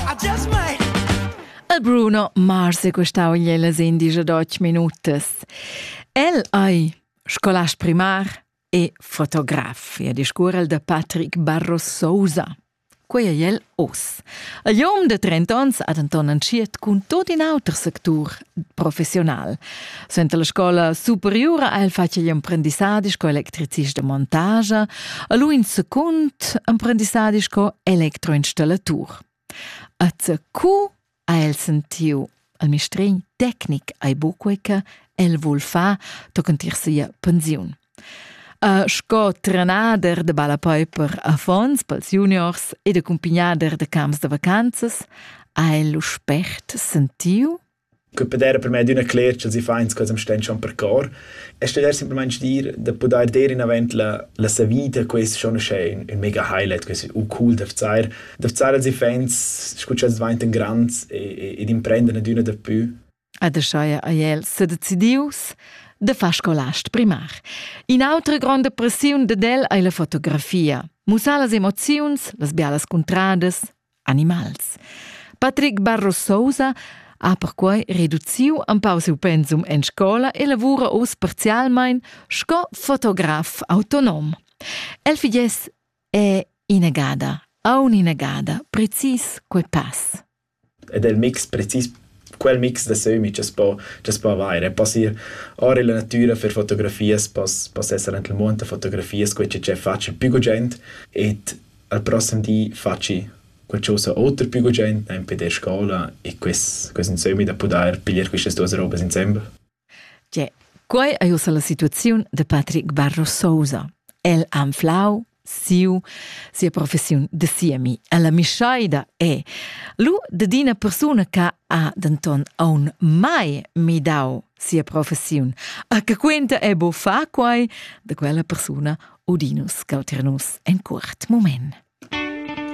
Adios, mate! El Bruno Mars è questau las indice d'och minutas. El ei scolast primar e fotograf e discurrel da Patrick Barro Sousa. Quei ei el oz. A jom de 30 ans ha denton entschiet cun tot in auter sectur professional. Suenter la scola superiura ha el fatg igl emprendissadi sco electricist de montage e lu in secund emprendissadi sco elektroinstallatur. A CQ ha el sentiu al mistregn tecnic ai buqueca el vul fa tochen tir sia pensiun. Sco trenader da ballapei per affons pels juniors ed accumpignader da camps da vacanzas ha el lu spert sentiu che peder per me d'üna cler ch'els i fains cos'am sten schon per cor e steder simplamaing dir da pudair der inavant la, la sa vita quest schon uschè un, un mega highlight quest u cool da vzar da vzar als i fains scu ch'els dvaintan grands e, e, ed imprendern ad üna da pü Ed aschia ei el sedecidius da far scolast primar. In'autra gronda pressiun dad el ei la fotografia. Mussar las emoziuns, las bialas cuntradas, animals. Patrick Barro Sousa ha perquei reduciu empau siu pensum en scola e lavura uss parzialmein sco fotograf autonom. El figess è inagada, aun inagada, precis quei pass. Ed el mix precis quel mix da sömmi cha's po cha's po avair. E poss ir or illa natüra fer fotografias, poss poss esser ant il muond da fotografias, quai che fatscha pü gugent ed al prossem di fatschi qualchosa oter pü gugent, nempe der scoula e quist quist insömmi da pudair piglier quistas duos robas insembel. Quei ei ussa la situaziun da Patrick Barro Sousa. El ha anflau siu, sia professiun da siemi. La mischeida è lu dad ina persuna che ha denton aun mai midau sia professiun. A che quenta è bo fa quai da quella persuna Odinus Calternus en curt moment.